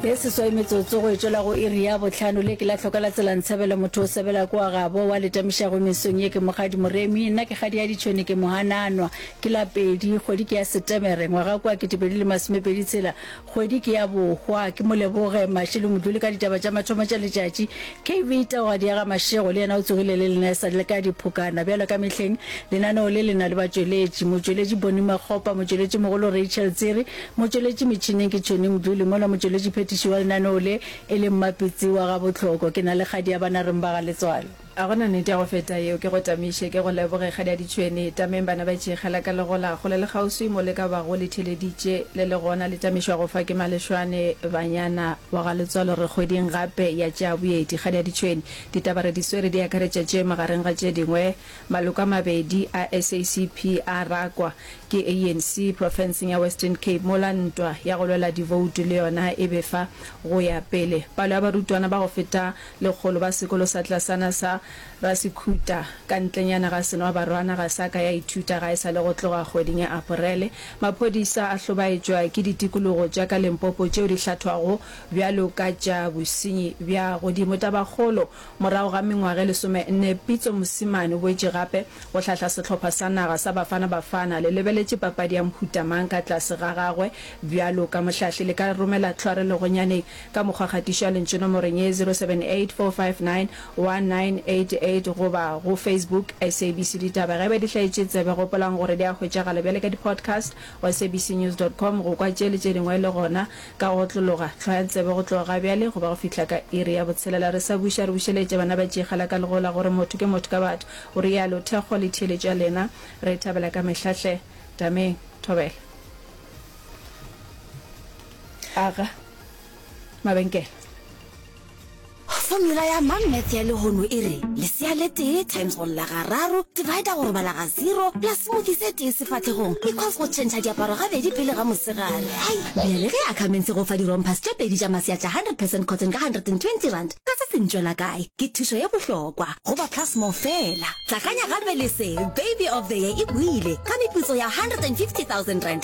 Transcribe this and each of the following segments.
e seswai metsotso go etšwela go iri ya botlhano le ke la tlhoka la tsela ntshabela motho o sebela kwa gabo wa letamišago mesong ye ke mogadi moremi nna ke gadi ya ditšhwene ke mogananwa ke la pedi kgwedi ke ya setemere ngwaga kwa ketepedi le masomepedi tshela kgwedi ke ya bohwa ke moleboge maše le module ka ditaba tša mathomo tša letšatši kv taogadi ya ga mašego le yena o tsogile le lena e sa le ka diphokana bjalo ka mehleng lenaneo le lena le batšweletši motšweletši boni makgopa motšweletši mogolo rachel tsere Motšweletši metšhineng ke Tšhoni Mdluli, mola motšweletši phethiši wa lenaneo le e le Mmapitsi wa ga Botlhoko. Ke na le kgadi ya Banareng ba ga Letswalo. A go na nete ya go feta yeo? Ke go tamiše, ke go leboge, kgadiadi Tšhweni. Tameng bana ba Tšeikgela ka le gola, kgole le kgauswi mo le ka bago le theleditše. Le le gona le tamišwa go fa ke Malešwane, Banyana, wa ga Letswalo re kgweding gape ya tša boeti. Kgadiadi Tšhweni, ditaba re di swere di akaretša tše magareng ga tše dingwe, Maloko a mabedi a SACP a rakwa ke ANC profenseng ya Western Cape mola ntwa ya go lwela divoutu le yona e befa go ya pele. Palo ya barutwana ba go feta lekgolo ba sekolo sa tlasana sa Rasikhuta ka ntlenyana ga Senoabarwana ga sa ka ya ithuta ga e sa le go tloga kgweding ya Aporele. Maphodisa a hlobaetšwa ke ditikologo tša ka Limpopo tšeo di hlathwago bjalo ka tša bosenyi bja godimo. Tabakgolo Morago ga mengwaga e lesomenne, Pitso Mosimane o boetše gape go hlahla sehlopha sa naga sa Bafana Bafana. Le lebeletše papadi ya mohuta mang ka tlase ga gagwe? Bjalo ka mohlahli, le ka romela tlhware legonyaneng ka mokgwa kgatišo ya lentšu nomorong ye, 0784591988, goba go Facebook, SABC Ditaba. Ge e ba di hlaetše tsebe, gopolang gore di a hwetšagala bjale ka di-podcast go sabcnews dot com, go kwa tše le tše dingwe le gona Ka go otlologa, hlwaya tsebe go tloga ga bjale go ba go fihla ka iri ya botshelela. Re sa buša, re bušeletše bana ba tšeegela ka lego la gore motho ke motho ka batho, o realo. Thekgo le theeletšo ya lena re e thabela ka mehla hle. Tameng. Thobela. Aga mabenkele. Formula ya mang maths ya lehono e re lesea le tee times go lla ga raro divider go robala ga zero plus smoothie se tee sefatlhegong equals go tšhentšha diaparo gabedi pele ga mosegare hai bjale ge ackermans e go fa dirompers tše pedi tša masea tša 100 percent cotton ka 120 rand ka se se ntšwela kae ke thušo ye bohlokwa go ba plus more fela tlakanya gape le se baby of the year e buile ka meputso ya 150000 rand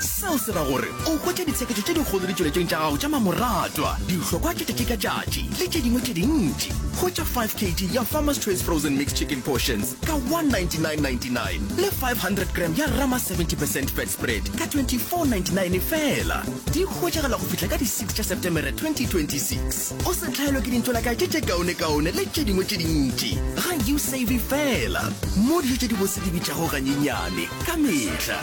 Seo se ra gore o hwetša ditsheketšo tše dikgolo ditšweletšong tša gago tša mamoratwa, dihlokwa tša tšatši ka tšatši le tše dingwe tše dintši. Hwetša 5 kg ya Farmer's Choice Frozen Mixed Chicken Portions ka 199.99 le 500 gram ya Rama 70 percent Fat Spread ka 24.99 feela. Di hwetšagala go fihla ka di 6 tša Setemere 2026. o se tlhaelwe ke dintšola ka tše tše kaonekaone le tše dingwe tše dintši ga you save fela mo dijo tše di bose di bitšago ganyenyane ka mehla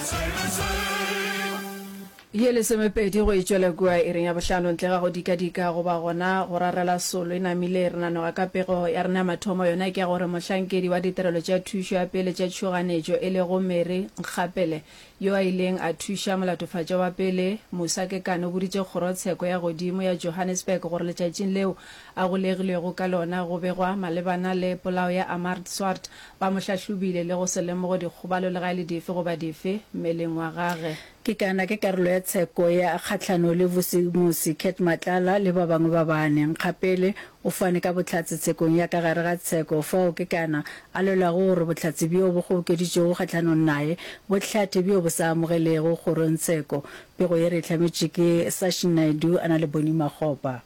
ye lesomepedi go itšwela kua e reng ya bohlano ntle ga go dikadika goba gona go rarela solo e namile re nanoga ka pego ya rena ya mathomo yona ke ya gore mohlankedi wa ditirelo tša thušo ya pele tša tšhoganetšo e lego mary nkgapele Yo a ileng a thuša molatofatša wa pele, Musa Kekana o boditše Kgorotsheko ya Godimo ya Johannesburg gore letšatšing leo a golegilwego ka lona go begwa malebana le polao ya Amart Swart, ba mo hlahlobile le go se lemogo dikgobalo le ga e le dife goba dife mmeleng wa gage. Kekana ke karolo ya tsheko ya kgahlano le Vusimusi Cat Matlala le ba bangwe ba bane. Nkgapele O fane ka bohlatse tshekong ya ka gare ga tsheko, fao ke kana a lwelago gore bohlatse bjo bo kgobokeditšwego kgahlanong naye bo hlathe bjo bo sa amogelego kgorongtsheko. Pego ye re e hlametšwe ke Sashi Naidoo a na le Bonnie Makgopa.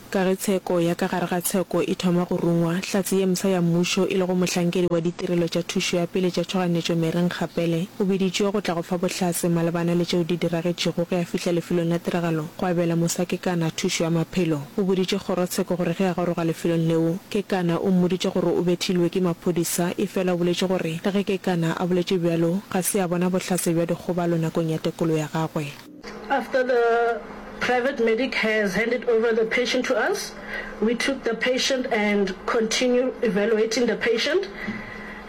Ka ge tsheko ya ka gare ga tsheko e thoma go rungwa, Hlatse ye msa ya Mmušo e lego mohlankedi wa ditirelo tša thušo ya pele tša tšhoganetšo Mary Nkgapele o biditšwe go tla go fa bohlatse malebana le tšeo di diragetšego ge a fihla lefelong la tiragalo go abela mosakekana thušo ya maphelo. O boditše kgorotsheko gore ge a goroga lefelong leo, Kekana o mmoditše gore o bethilwe ke maphodisa, efela o boletše gore le ge Kekana a boletše bjalo, ga se a bona bohlatse bja dikgobalo nakong ya tekolo ya gagwe. After the private medic has handed over the patient to us, we took the patient and continue evaluating the patient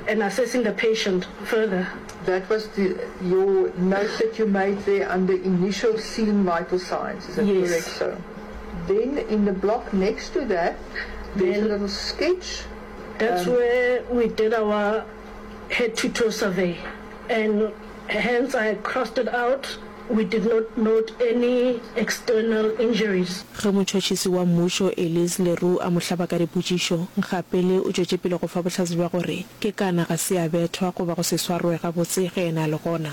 and assessing the patient further. That was the, your note that you made there under initial scene vital signs, is that correct? Yes. Then in the block next to that there is a little sketch. That's where we did our head to toe survey and hence I crossed it out, we did not note any external injuries. Ge motšhotšhisi wa mmušo Elise le Roux a mo hlaba ka dipotšišo, Nkgapele o tšwetše pele go fa bohlatse bja gore ke kana ga se a bethwa goba go se swarwe gabotse ge yena a le gona.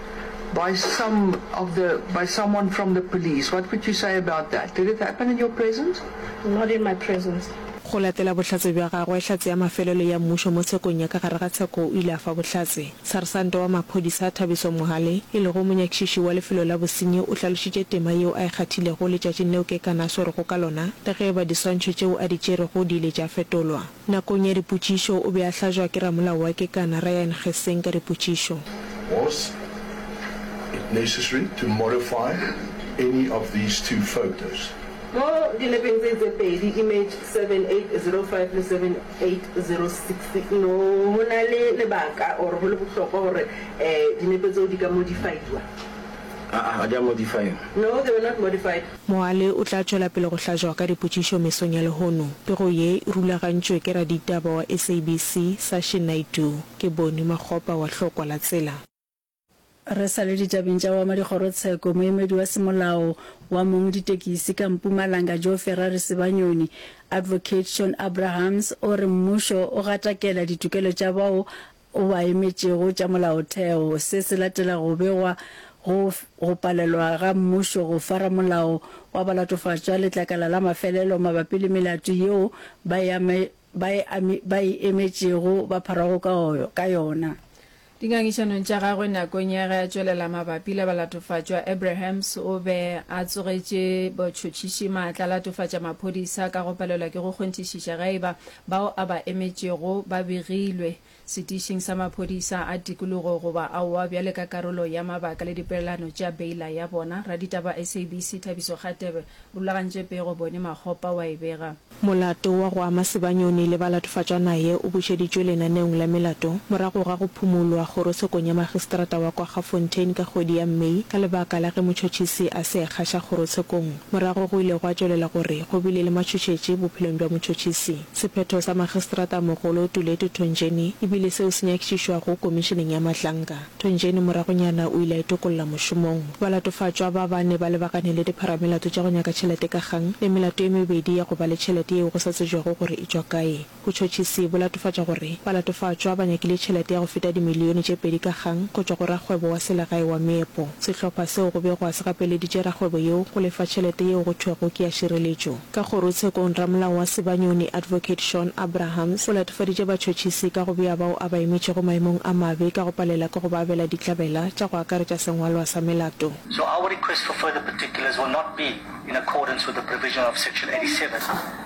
by some of the by someone from the police. What could you say about that? Did it happen in your presence? Not in my presence. Go latela bohlatse bja gagwe, Hlatse ya Mafelelo ya Mmušo mo tshekong ya ka gare ga tsheko o ile a fa bohlatse. Sarsanta wa maphodisa Thabiso Mohale, e lego monyakišiši wa lefelo la bosenyi, o hlalošitše tema yeo a e kgathilego letšatšing leo ke ka na swerego ka lona le ge e ba diswantšho tšeo a di tšerego di ile tša fetolwa. Nakong ya dipotšišo, o be a hlajwa ke ramolao wa kekana, Ryan Gesing, ka dipotšišo. Was it necessary to modify any of these two photos? Mo dinepe tse tse pedi, image 7805 le 7806, no go na le lebaka or go le bohlokwa gore dinepe tseo di ka modify-iwa? Aa, ga di a modify-iwa. No, they were not modified. Moale o tla tšwela pele go hlajwa ka dipotšišo mesong ya lehono. Pego ye e rulagantšwe ke raditaba wa SABC, Sashi Naidoo. Ke Boni Makgopa wa Hlokwa la Tsela. Re sa le ditabeng tša boamadikgorotsheko, moemedi wa semolao wa mong ditekisi ka Mpumalanga Joe Ferrari Sebanyoni, Advocate Shawn Abrahams o re mmušo o gatakela ditokelo tša bao o ba emetšego tša molaotheo. Se se latela go begwa go go palelwa ga mmušo go fara molao wa balatofatšwa letlakala la mafelelo mabapi le melato yeo ba e ame, ba e ame, ba e emetšego ba pharwago ka, ka yona. Dingangišanong tša gagwe nakong ya ge a tšwelela mabapi le balatofatšwa, Abrahams o be a tsogetše botšhotšhiši maatla a latofatša maphodisa ka go palelwa ke go kgonthišiša ge e ba Bao a ba emetšego ba begilwe setišing sa maphodisa a tikologo goba aowa bjale ka karolo ya mabaka le dipeelano tša beila ya bona. Raditaba SABC Thabiso Kgatebe o rulagantše pego Bone Makgopa wa e bega. Molato wa go ama Sebanyoni le ba latofatšwa naye o bušeditšwe lenaneong la melato morago ga go phumolwa kgorosekong ya magistrata wa kwa Gafontein ka kgwedi ya May ka lebaka la ge motšhotšhisi a se ekgaša kgorosekong. Morago go ile gwa tšwelela gore go bile le matšhošetši bophelong bja motšhotšhisi. Sephetho sa Magistrata-mogolo Tuletu Thonjeni e bile seo se nyakišišwago Komišeneng ya Mahlanka. Thonjeni moragonyana o ile a itokolla mošomong. Balatofatšwa ba bane ba lebagane le dipharamelato tša go nyaka tšhelete ka kgang le melato e mebedi ya go ba le tšhelete yeo go sa tsebjwago gore e tšwa kae. Botšhotšhisi bo latofatša gore balatofatšwa ba nyakile tšhelete ya go feta dimilione tše pedi ka kgang go tšwa go rakgwebo wa selegae wa meepo. Sehlopha seo go bego a se gapeleditše rakgwebo yeo go lefa tšhelete yeo go thwego ke ya šireletšo. Ka kgorotshekong, ramolao wa Sibanyoni, Advocate Shawn Abrahams, o latofaditše batšhotšhisi ka go bea bao a ba emetšego maemong a mabe ka go palela ke go ba abela ditlabela tša go akaretša sengwalwa sa melato. So our request for further particulars will not be in accordance with the provision of section 87.